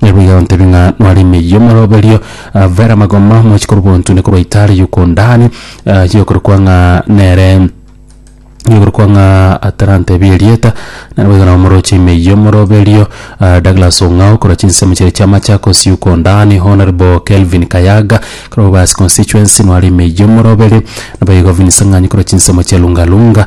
Naende boigo agotebia ng'a nware emeyio moroberio, vera amagoma mochi korwa bontune korwa itaare y'Okondani, eh, yokorokwa ng'a nere yokorokwa ng'a atarantebie erieta, naende boigo nabo moroche emeyio moroberio, eh, Douglas Ong'ao korwa chinsemo chiria chia Machakos y'Okondani, Honourable Kelvin Kayaga korwa Bobasi constituency nware emeyio moroberio, naboigo Vincent Ng'anyi korwa chinsemo chia Lunga Lunga.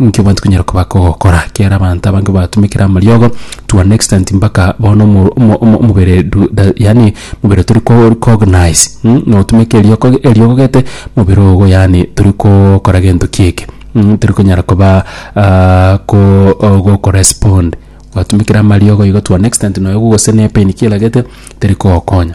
Inki abanto banyare koba gokora kiaro abanto abange batumekire amariogo to an extent mpaka bono omo omo omo omobere du da yaani omobere tori ko recognize mh na otumeke eriogo eriogo gete omobere ogo yaani tori kokora gento ki eke mh tori konyara koba ko o goko respond gwatumekire amariogo igo to an extent noyo gogosena epain kiera gete teri kogokonya.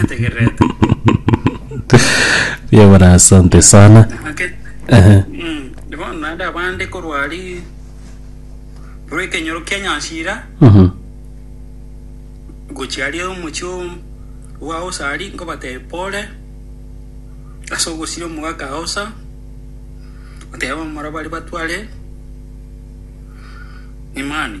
nategererete Mbuya bora asante sana. ake Ehe. Mm, bono naende abande korwa aria korwa ekenyoro kia nyansira Mhm. gochia aria omochie o- bwa aosa aria nkobatebia pole ase ogosira omogaka aosa oteba omora baria batware imani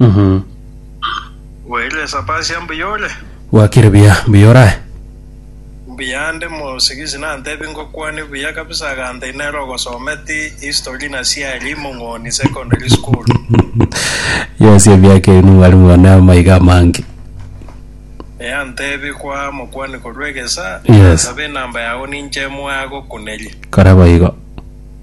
Mhm. Bwairire Sapasia mbuya ore? Bwakire buya, mbuya orae? Mbuya ande mosigisi nantebi ngokwane buya kabisa agantai nere ogosometi history na siari Mong'oni secondary school. Yes, emiaka eye nomwarimu one amaiga amange. Ee antebi kwa mokwani korwa egesa Yes. nasabe enamba yago ninche moagokuneria. Kora boigo.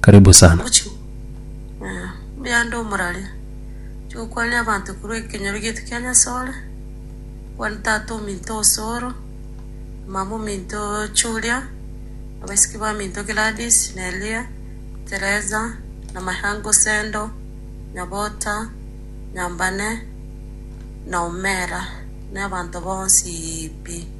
Karibu sana. Ogochigwa eh, mbuya ande omorari, oche gokwania abanto korwa ekenyoro giaito kia Nyasore, okwanie tata ominto o Soro, mama ominto o Julia, abaisiki baminto Gladys, Nelia, Teresa, Namayange Osendo, Nyabota, Nyambane, na Omera, na abanto bonsi pi.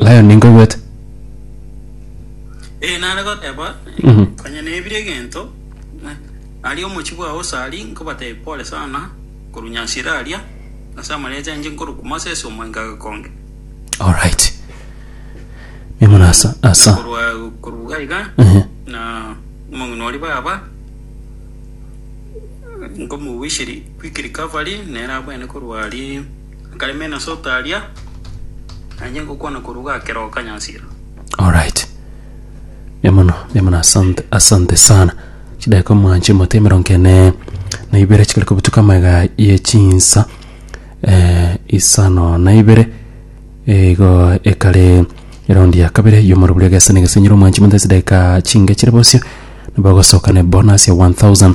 Lion ninkoigwete. Ee, nare goteba, Konya nebire egento, aria omochie bwao Usari, nkobatebia pole sana korwa Nyasira aria, ase amarecha ainche nkorokwa Moses omoinga gekonge. Alright. Nigo nasa asa. Korwa korwa gaiga, Ehe. na omong'ina oria baba, nkomowisiri quick recovery, nere abwene korwa aria Nkaimena ase otaria, na inche ngokwana korwa gakera okanyasira. Alright. Mbuya mono, mbuya mono asante, asante sana. Chidakika omwanche mote emerongo ene na ibere chikare kobutuka amaiga ye chinsa eh, isano na ibere eh, igo ekare eraundi ya kabere yomoro buri egesa na egesenyero omwanche mote chidakika chinge chire bosio nibagosoka ne bonus ya 1000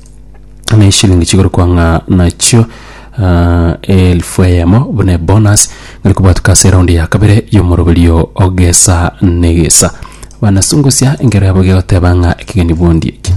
na eshilingi chikorokwa ng'a nachio ah, elfu eyemo buna ebonus ngari kobwatuka ase eraundi ya kabere y'omoroberio ogesa negesa bana sungusia engero yabo gegoteba ng'a ekegeni bondi eki